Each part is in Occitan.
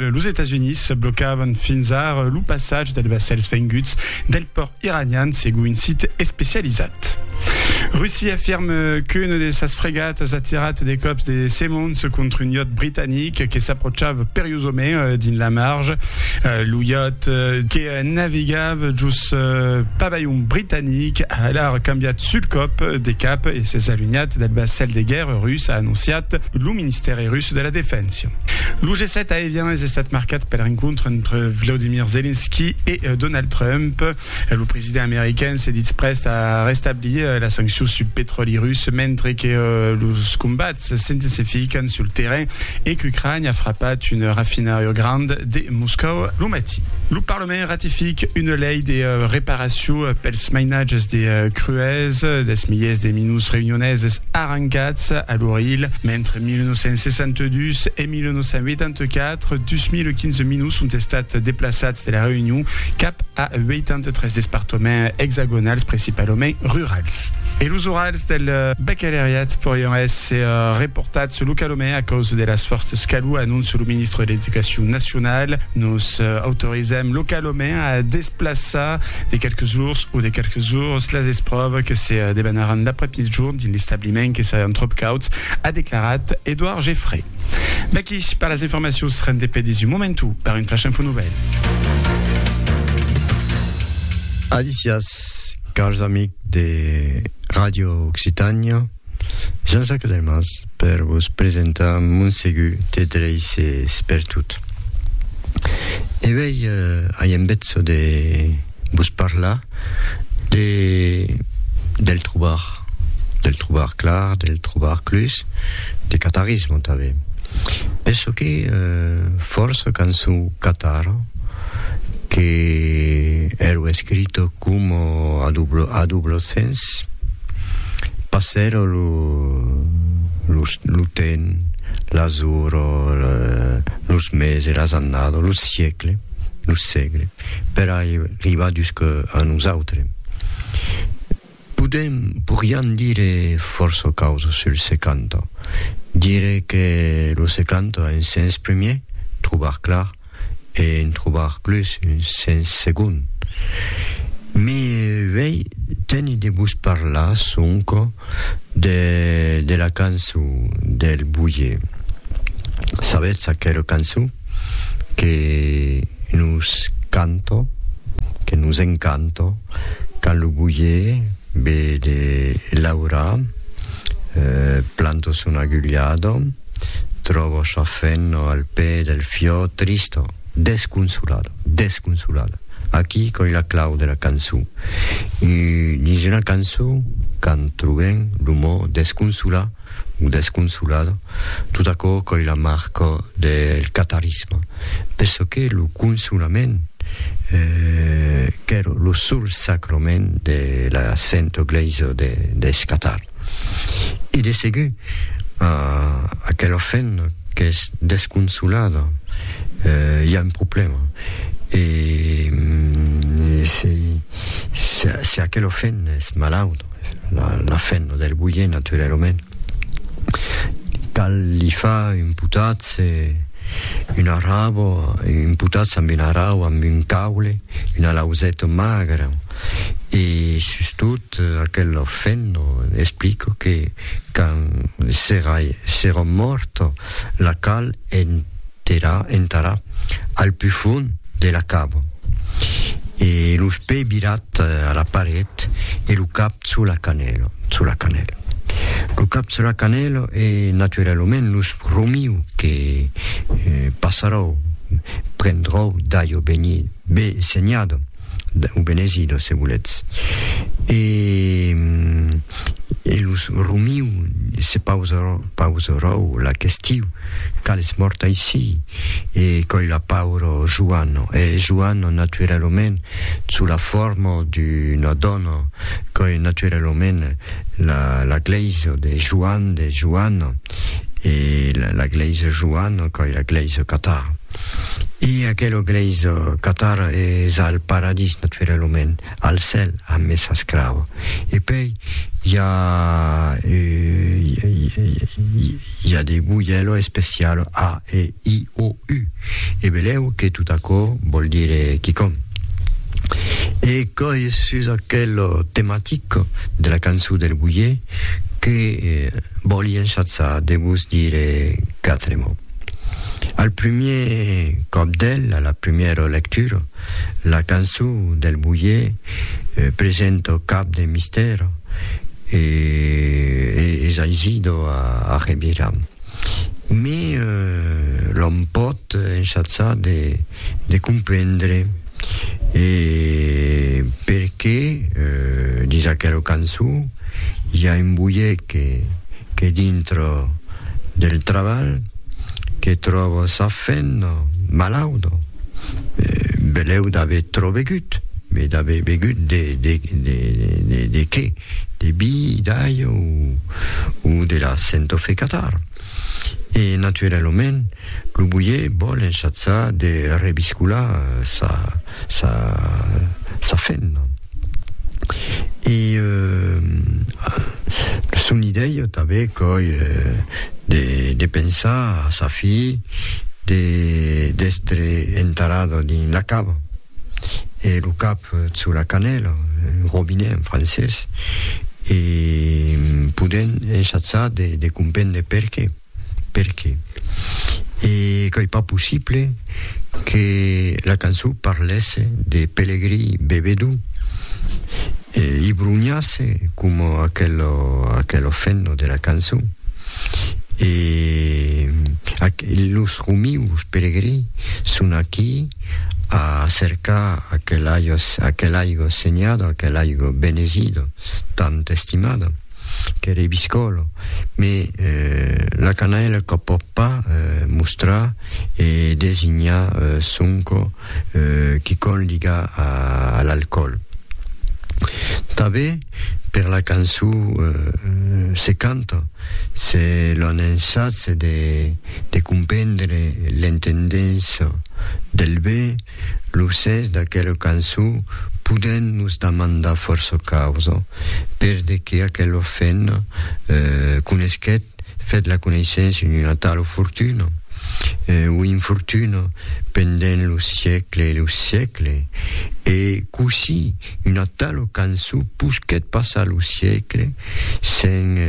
Los Estats Units blocavan fins ar lo passatge dels vassèls venguts del pòrt iranian, segon un sit especializat. Russia afirme qu'una de sas fregatas a tirat de còps de semons contra un iòt britanic que s'apròchava periosament dins la marge. Lo iòt que navegava jos pavalhon britanic a alar cambiat sul còp de cap e s'es alunhat del vassèl de guèrra rus, a anonciat lo ministèri rus de la Defensa. Russia. Lo G7 a evianes estat marcat pel rencontre entre Vladimir Zelensky e Donald Trump. Lo president american se ditz prèst a restablir las sanccions sul petròli rus mentre que los combats s'intensifican sul terrain e qu'Ucrània a frapat un rafinariu grand de Moscòu lo matin. Lo Parlament ratific una lei de reparacion pels mainatges de crues dels miliers de minus reunioneses arrancats a l'Orilh mentre 1962 e 1984, dus mil quinze minus ont estat deplaçats de la Reünion cap a 83 despartoments exagonals principalament rurals. E los orals del bacaleriat porián èsser reportats localament a causa de las fòrtas calor, anonça lo ministre de l'Educacion nacionala, Nos autorizèm localament a desplaçar de qualques jours o de qualques ores las espròvas que se debanaràn l'après-migdijorn dins l'establiment que serián tròp cauds. a declarat Edouard Geffray. Vaquí per las informacions rendepedis un momentu per un flash info nouvelles. Alicias, cars amics de Ràdio Occitània, Jean-Jacques Delmas per vos presentar mon segur de dreisses pertot. E vei, eh, ai en betzo de vos parla de del trobar, del trobar clar, del trobar clus, de catarisme tanben. Penso que fòrça cançon catara que ero escrita coma a dublo a dublo sens passèra lo lo lo temps, las oras, los meses, las annadas, los siecle. lo sègle per arribar jusc a nosautres. Podèm, porián dire fòrça causas sul 70. Dire que lo 70 un sens primièr, trobar clar, e en trobar clus un sens segond. Me vei tenir de vos parlar sonque de de la cançon del Boyer. Sabètz aquela cançon? que nos canto, que nos encanto, quand lo boyer ve de laurar, planto son agullado, tròvo sa fenno al pè del fiò, tristo, desconsolado, desconsolado. Aquí coi la clau de la cançon. Dins una cançon quand trobem lo mot desconsolar, Desconsolada, tot aquò qu'ei la marca del catarisme, penso que lo consolament qu'ère lo sol sacrament de la Sento Glèisa deth Catar. E de segur, a aquela femna qu'es desconsolada i a un problèma, e se aquela femna es malauta, la fen lo del boyer naturalament cal li fa un potatz un arrabo un potatz amb un arrau amb un caule una lauseta magra e sustot aquel lo fen lo explico que quand serà serò mòrt la cal enterrar al pufon de la cava, e los pè virat a la paret e lo cap sus la canèla, sus la canèla. Lo cap sus la canèla e naturalament los romiu que passaròu, prendròu d'aieu beni, be senhada, o benezida se volètz. E e los romiu se pausarò, pausaròu la questiu. Tal es mòrt aicí, e coi la pauro Juano. E Juano, naturalament, sous la forma d'una dòna, coi naturalament la la glèisa de Juan de Juano, e la la glèisa Juano coi la glèisa catara. E aquela glèisa catara es al paradís, naturalament. al cèl amb mes ascrau e pei i a i a de guyèlo especial a e i o u e belèu que tot aquò vòl dire quicòm e coi sus aquelo tematic de la cançon del guyè que vòli ensatzar de vos dire quatre mots al primièr còp del a la primièra lectura La cançon del boier presenta cap de mistèr e es aisida a revirar. Mai l'òm pòt ensajar de comprendre e perqué dins aquela cançon i a un boier que dintre del trabalh que tròba sa femna malauda. belèu d'aver trop begut, mais d'aver begut de de de de de qué? De bi, d'aiu ou de la sentofe Catar. E naturalament lo boier vòl enchatzar de rebiscolar sa sa sa fenna. E son idèia tanben qu'òi de pensar a sa filh de d'èstre enterrada dins la cava e lo cap sus la canèla, robinet en francés, e podent ensajar de comprendre perqué. perqué? E qu'ei pas possible que la cançon parlèsse de pelegrí bevedor e i bronhasse coma aquelo fenno de la cançon e los romius pelegrí son aquí a cercar aquel aigo senhado, aquel aigo benesido tant estimado. qu'ère biscòlo, me la canaila qu'a pòt pas mostrar e designar sonco quicòm liga a l'alcòl. Tanbe per la cançó se canta, se lo an ensatz de comprendre l'entendença del be, Lo sens d'aquela cançon podèm nos damandar fòrça causas, per de que aquela femna conesquèt, fèt la coneissença d'una tala fortuna, o infortuna, pendent lo siecle e lo siecle, e cossí Una tala cançó posquèt passar lo siecle sens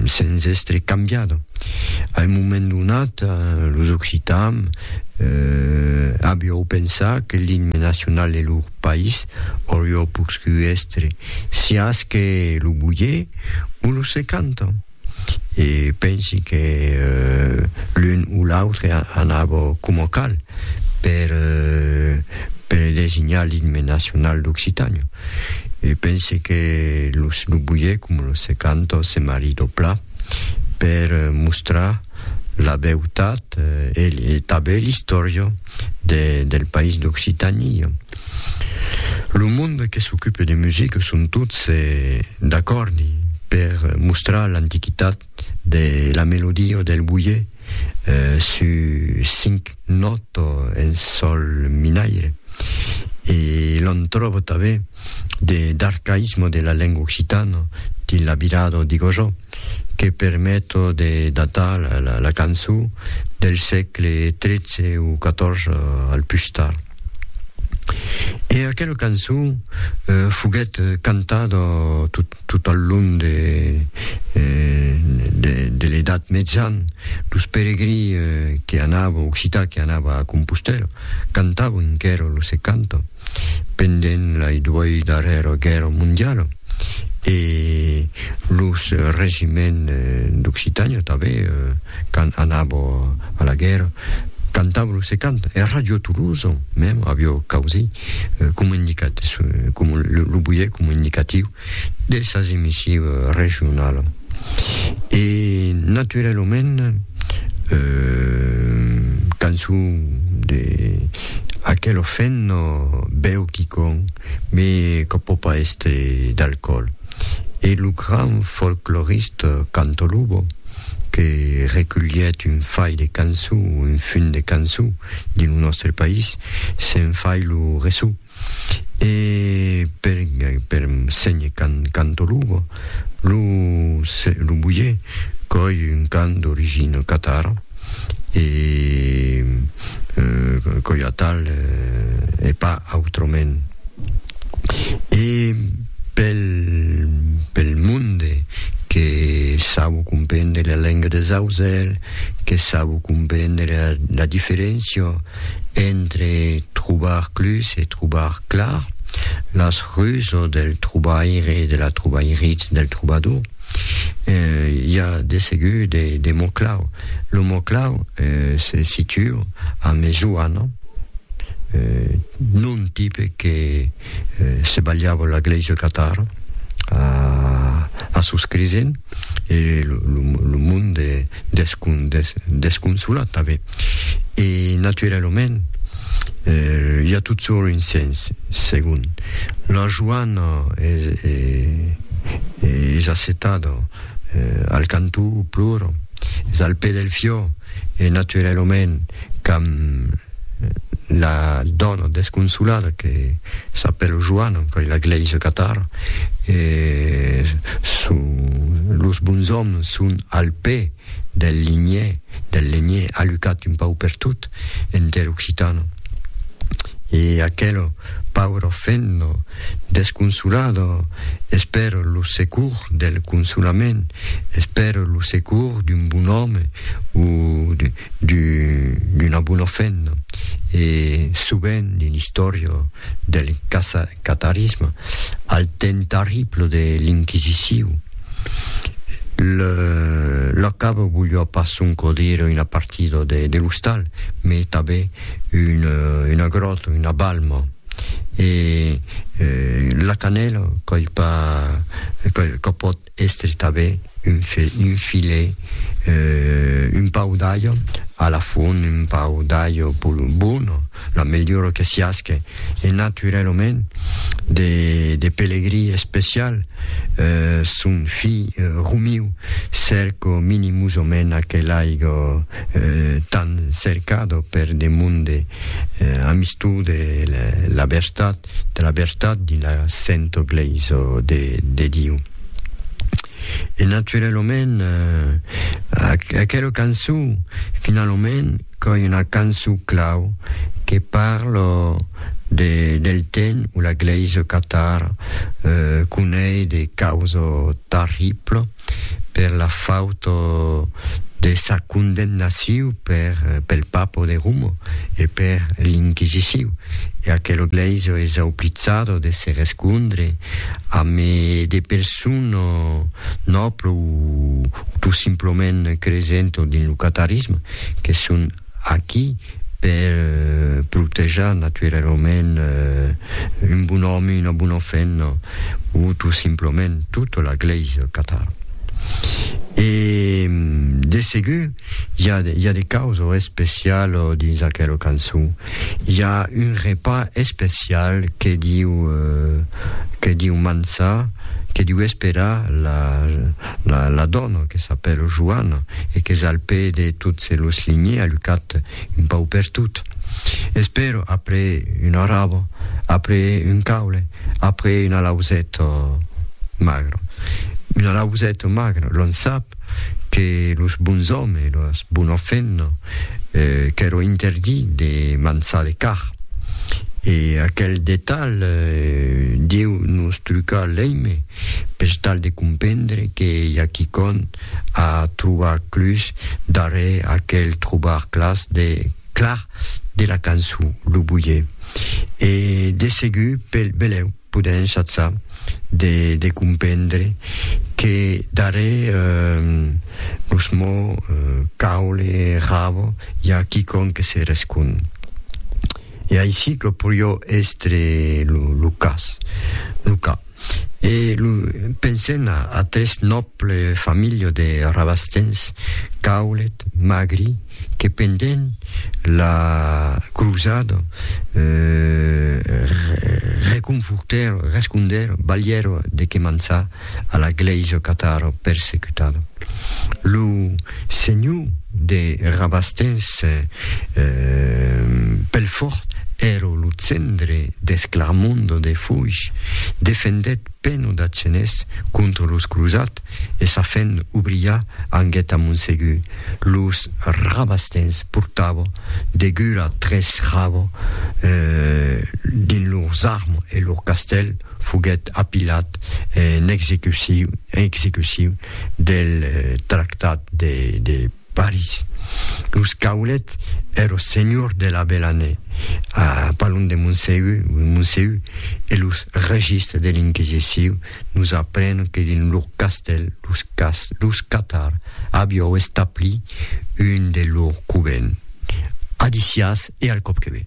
sens èstre cambiada. A un moment donat, los occitans avió pensar que l'imne nacional de lor país aurió poscut èstre siás que lo bulhé o lo se canta. e pensi que l'un o l'autre anava coma cal per per designar l'itme nacional d'Occitània. E pensi que lo lo buier coma lo se canta o se maridoplà per mostrar la beutat e tanben l'istòria del país d'Occitània. Lo monde que s'ocupe de musica son tots d'acòrdi per mostrar l'antiquitat de la melodia del boier sus cinc nòta en sòl minaire e l'on tròba tanben d'arcaïsme de la lenga occitana dins la virada digosò. que permet de datar la cançon del sègle tretze o catòrze al pus tard. E aquela cançon foguèt cantada tot al long de l'Edat Mejan, los peregrins que anava, occitans que anava a Compostèla, cantavan enquèra, los se cantan, pendent lai duei darrèra guèrra mondiala e los regiments d'Occitània tanben quand anava a la guèrra cantava lo se canta e Ràdio Tolosa mèm aviá causí comunicat, lo buièt comunicatiu de sas emissives regionalas e naturalament cançon de aquel ofent bèu quicòm me que pò pas èstre d'alcòl e lo grand folcloriste Canto Lobo que reculhèt un fai de cançon un funt de cançon dins lo nòstre país se'n fai lo resum. E per per senhe can canto lugo lu se lu buie coi un can d'origino catara e coi a tal e pas autroment e pel pel monde que sabo comprendre la lenga des auzelh que sabo comprendre la diferencia Entre trobar clus e trobar clar, las rues o del trobaire e de la trobairiz del trobador, i a de segur de, de mots clau. Lo mot clau se situa a mejoana, non tipe que se balhava la glèisa catar a, a sos cresents, e lo, lo monde descon, desconsolat tanben. E naturalament, i a totjorn un sens segon. La joana es assetada al cantó, plora, es al pè del fiò, e naturalament qu'amb la dòna desconsolada que s'apèla Joana, que la glèisa catara, los bons òmes son al pè. del linhè, del lenhè, alucat un pauc pertot enter occitan. E aquel pauro fendo desconsolado esper lo secour del consolament, esper lo secour d'un bon òme o d'una bona fendo. E sovent dins l'istòria del casacatarisme, al temps tarrible de l'inquisiciu, Le, lo cap volió pas sonco dire una partida de, de l'ostal, mais tanben una, una gròta, una balma. E eh, la canèla qu'ai pas, que, que pòt èstre tanben un, fi, un filet, eh, un pau d'alha a la fon, un pau d'alha bona, La melhora que siasque e naturèlament de pelegrí especial son filh Romiu cerco minimosament aquel aigo tan cercado per de monde amistou de la vertat de la vertat dins la sento glèisa de Diu. E naturèlament aquela cançon finalament Coi una canço clau que parl de del ten o la glèisa catar conei de causa tarribla per la fauta de sa condemnaciu per pel papa de Roma e per l'inquisiciu e aquela glèisa es auplitzada de se rescondre ame de persona nòbla o tot simplament cresenta dins lo catarisme. que son aquí per protejar naturalament un bon òme, una bona femna o tot simplament tota la glèisa au Qatar. E de segur i a, i a de causa especial dins aquela cançon. I a un repas especial que diu, que diu mançar, que diu esperar la, La dòna, que s'apèla Joana e qu'es al pè de tots los linhers a lucat un pauc per tot. Espèro, après una raba, après un caule, après una lauseta magra. Una lauseta magra, l'òm sap que los bons òmes e las bonas femnas qu'èron interdits de mançar de carn. E aquel detalh deu nos trucar l'èime. pes tal de compendre que i a quicòm a trobar clus darrer aquel trobar clars de clar de la cançon lo boyer e de segur pel belèu podèm chatsar de de compendre que darrer los mots caule rabo i a quicòm que se rescond. E aicí que porió èstre lo cas, lo cas. E lo, pensèm a atrés nòble familha de Rabastens, caulet, magri, que pendent la crosada reconfortèro, rescondèro, balhèro de que mançar, a la glèisa catara persecutada. Lo senhor de Rabastens Pelfòrt èra lo cendre deth Clarmondo de Foix, defendèt Peno d'Atzenés contra los crosats e sa fent obriá anguèt a Monsegur. Los Rabastens portava degura tres rava dins lors armes e lor castèl. foguèt apilat en execucion del Tractat de París. Los Caulet èro senhors de la Belanè, a Palon de Moncèu, e los registres de l'Inquisicion nos aprenon que dins lor castèl los Catard avió establit un de lor covent, a Dicias e al Còpqueve.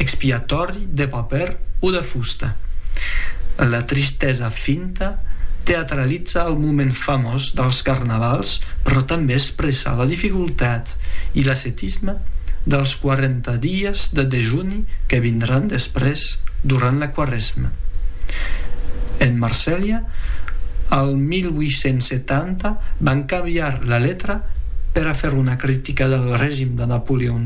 expiatòri de papèr o de fusta. La tristesa finta teatraliza el moment famós dels carnavals però tanben expressa la dificultat i l'ascetisme dels 40 dies de dejuni que vindràn després durant la Quaresma. En Marselha, al 1870, van cambiar la letra per a fer una critica del regim de Napoleon.